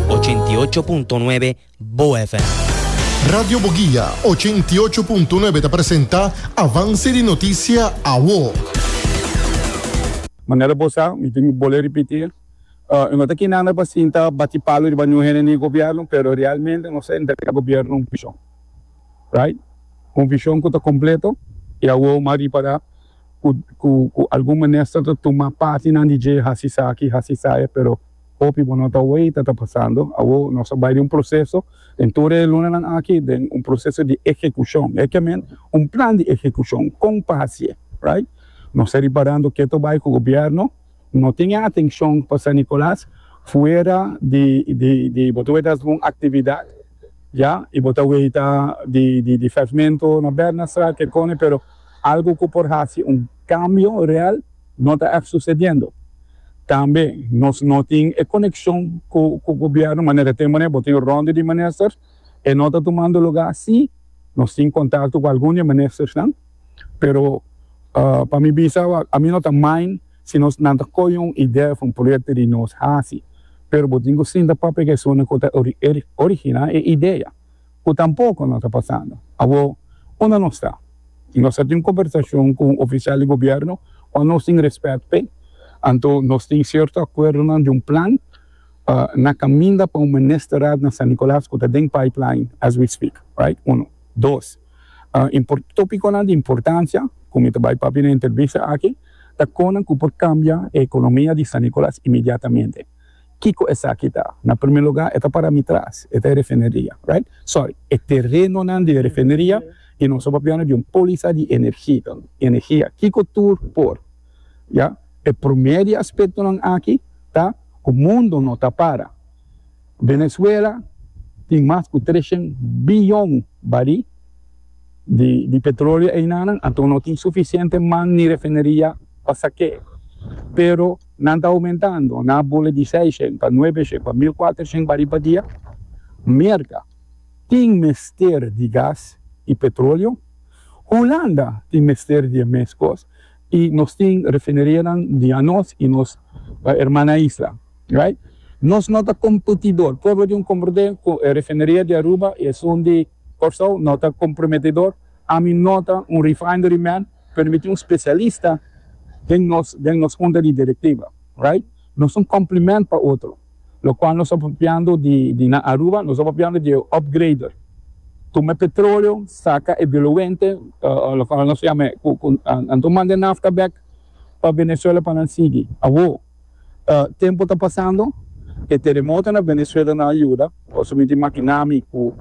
Ochenta i ocho punto nuebe Bo FM. Radio Boguia ochenta i ocho punto nuebe ta presenta Avance di Noticia Awo. Manera bo sa, mi tin bole ripiti, e no ta kende anda pa sinta bati palu riba niun hende ni gobierno, pero realmente nos a entrega gobierno un vision, right? Un vision cu ta completo y awor mas riba ta. ku ku algun minister ta tuma parti nan di dje hasi sa aki hasi sa ya pero hopi bo no ta wei ta ta pasando awo nos a bai den un proseso den tur e luna nan aki den un proseso di ehekushon e kemen un plan di ehekushon kon pasié right nos ta riparando ke ta bai ku gobièrnu no tin e atenshon pa San Nicolas fuera di di di bo ta wei ta algun aktividat ya i bo ta wei ta di di di vèvmento na Bernardstraat ke kòne pero. Algu ku por hasi un kambio real no ta èf susediendo. Tambe nos no tin e konekshon ku gobièrnu manera te manera bo tin rònde di minister e no ta tumando lugá. Sí, nos tin kontakto ku algun di e ministersnan, pero pa mi bisa awa a mi no ta main si nos nan ta koyo un idea òf un proyekto di nos hasi, pero bo tin ku sinta papia ku esunnan ku ta originá e idea. ku tampoko no ta pasando awor unda nos ta. Si nos ta tin un kombersashon ku un ofisial di gobièrnu ku nos tin rèspèt p'e, anto nos tin sierto akuerdonan di un plan na kaminda pa un ministerat na San Nikolas ku ta den pipeline as we speak, right? Uno. Dos, import, topikonan di importansia ku mi ta bai papia na entrevista aki ta konan ku por kambia e ekonomia di San Nikolas inmediatamente. Kiko esaki ta? Na primer lugar e ta para mi tras, e ta e refineria, right? Sorry, e terenonan di e refineria y nos a papia di un poliza di energi, energia. Kiko tur por? Ya, e primer di aspectonan aki ta cu mundo no ta para. Venezuela tin mas cu treshen biyon baril di di petroleo einanan, anto no tin suficiente man ni refineria pa sake'e, pero. Nan ta oumentando na bule di seis shen pa nuebe shen pa mil kuater shen bari pa dia. Merka tin mester di gas i petroleo. Hulanda tin mester di e mes kos i nos tin refinerianan di anos i nos erman na isla. Right? Nos no ta kompetidor. Pueblo di un komprende ku e refineria di Aruba i esun di Kòrsou no ta komprometedor. Ami no ta un refinery man, pero mi tin un specialista den nos den nos hunta di directiva, right? Nos ta un complement pa otro, locual nos ta papiando di di na Aruba nos ta papiando di e upgrader, tuma e petroleo, saca e diluente, locual nos ta yama e cu cu anto manda e nafta bek pa Venezuela pa nan sigui, awo. Tempu ta pasando, e teremoto na Venezuela no a yuda. Pasobra mi tin makinami ku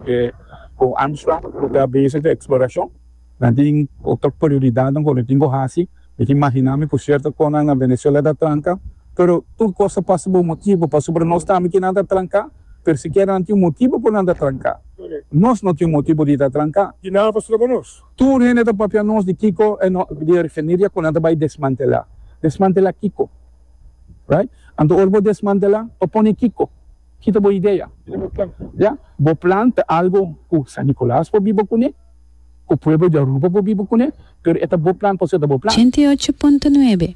e con Armstrong ku ta bese ku e eksplorashon. Nan tin otro prioridatnan ku nan tin ku hasi. Mi tin makinami ku sierto kosnan na Venezuela ta tranka. Pero tur kos ta pasa pa un motibu. Pasobra nos tambe kier nan ta tranka, pero sikiera nan tin un motibu por nan ta tranka. Nos no tin un motibu di ta tranka. Di nan a pasado ku nos? Tur hende ta papia nos di kiko e no di e refineria ku nan ta bai desmantela. Desmantela kiko? Right? Anto ora bo desmantela pa pone kiko? Kita bo idea. Ya, bo plan ta algo ku San Nicolas por biba kune, ku pueblo di Aruba por biba kune, pero e ta bo plan pasobra e ta bo plan. Ochenta i ocho punto nuebe.